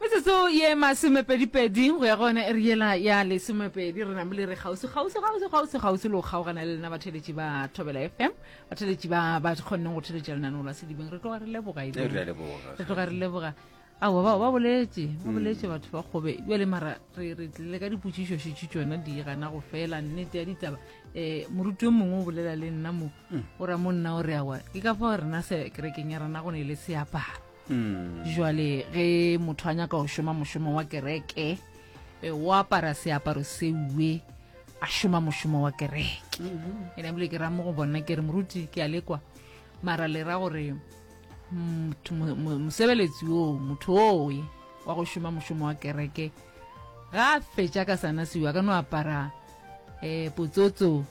Metsotso ye masomepedipedi go ya go yona e re yela ya lesomepedi re namile re kgauswi kgauswi kgauswi kgauswi kgauswi le go kgaogana le lena batheletši ba thobela fm batheletši ba ba kgonneng go theletša lenaneo la sedibeng re tloga re leboga e re tloga re leboga ao bao ba boletše ba mm. boletše batho ba kgobe bjale mara re re tlile ka dipotšišo šetše tsona di gana go fela nnete ya ditaba um eh, moruti yo mongwe o bolela le nna mo mm. o ra mo nna o re awa ke ka fao rena se kerekeng ya rena go ne le seaparo jwale ge motho a nyaka go šoma mošomo wa kereke eh, o apara seaparo seue a šoma mošomo wa kereke e ne bile ke ra mo go bona ke re moruti ke a lekwa mara le ra gore motho- mo- mo- mosebeletsi oo motho oye wa go šoma mošomo wa kereke ga a fetša ka sana seua ka no apara um potsotso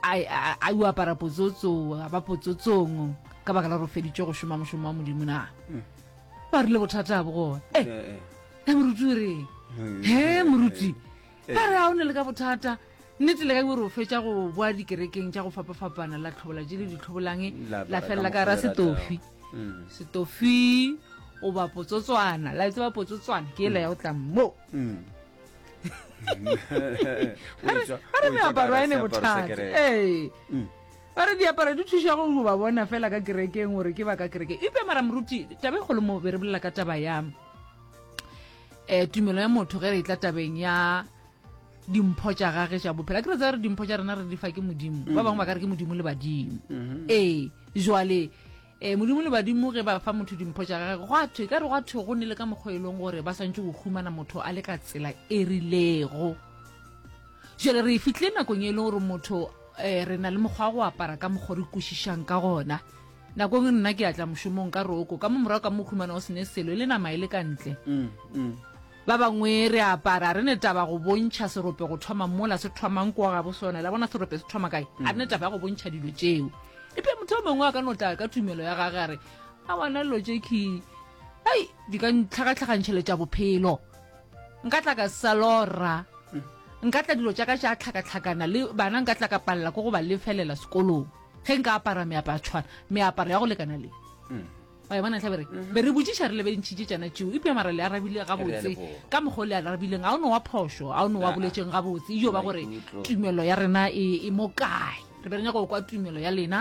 a o apara potsotso a ba potsotsong ka baka la gore o feditse go šoma mošomo wa modimo na mm. ba rile bothata bo gona e eh, eh, eh. moruti o reng he moruti ba re a o ne le ka bothata nnete le ka gore o fetsa go boa dikerekeng tša go fapafapana la tlhobola je le ditlhobolang la felela ka ra setofi mm. setofi o ba potsotswana la etse ba potsotswana ke e la ya go tlang mo mm. a re meaparo ene bothata ee mm. ba re diaparo di thuša go ba bona fela ka kerekeng gore ke ba ka kerekeng ipe mara moruti tabe kgolo mo be re bolela ka taba ya um tumelo ya motho ge re tla tabeng ya dimpho tša gage tša bophela ke re tsa re dimpho tša rena re di fa ke modimo ba bangwe ba ka re ke modimo le badimo mm-hmm. ee jwale Ee, Modimo le badimo ge ba fa motho dimpho tša gage, gwa thwe, ka re gwa thwe go nele ka mokgwa e leng gore ba swantše go humana motho a le ka tsela e rilego. Jale re e fitlile nakong e leng gore motho um re na le mokgwa wa go apara ka mokgwa re kwešišang ka gona nakong e nna ke atla mošomong ka roko ka mo morago ka mo humana o sene selo e le nama e le ka ntle mm, mm. Ba bangwe re a apara, a re ne taba go bontšha serope go thoma mola se thomang kwa gabo sona. La bona serope se thoma kae? A re ne taba ya go bontšha dilo tšeo. Epe motho o mongwe a ka no tla ka tumelo ya gage a re, a bona dilo tše ke hei di ka ntlhakatlhakantšheletša bophelo. Nka tla ka sa lora, nka tla dilo tša ka tša tlhakatlhakana le bana nka tla ka palela ko go ba lefelela sekolong ge nka apara meaparo ya tshwana, meaparo ya go lekana le. wa e bona tlhabe re mhm. be re botšiša re lebentšhitše tšana tšeo epja mara le arabile gabotse ka mokgwa o le arabileng ga o ne wa phošo ga o ne wa boletseng gabotse ejo ba gore tumelo ya rena e, e mo kae re be re nyaka go kwa tumelo ya lena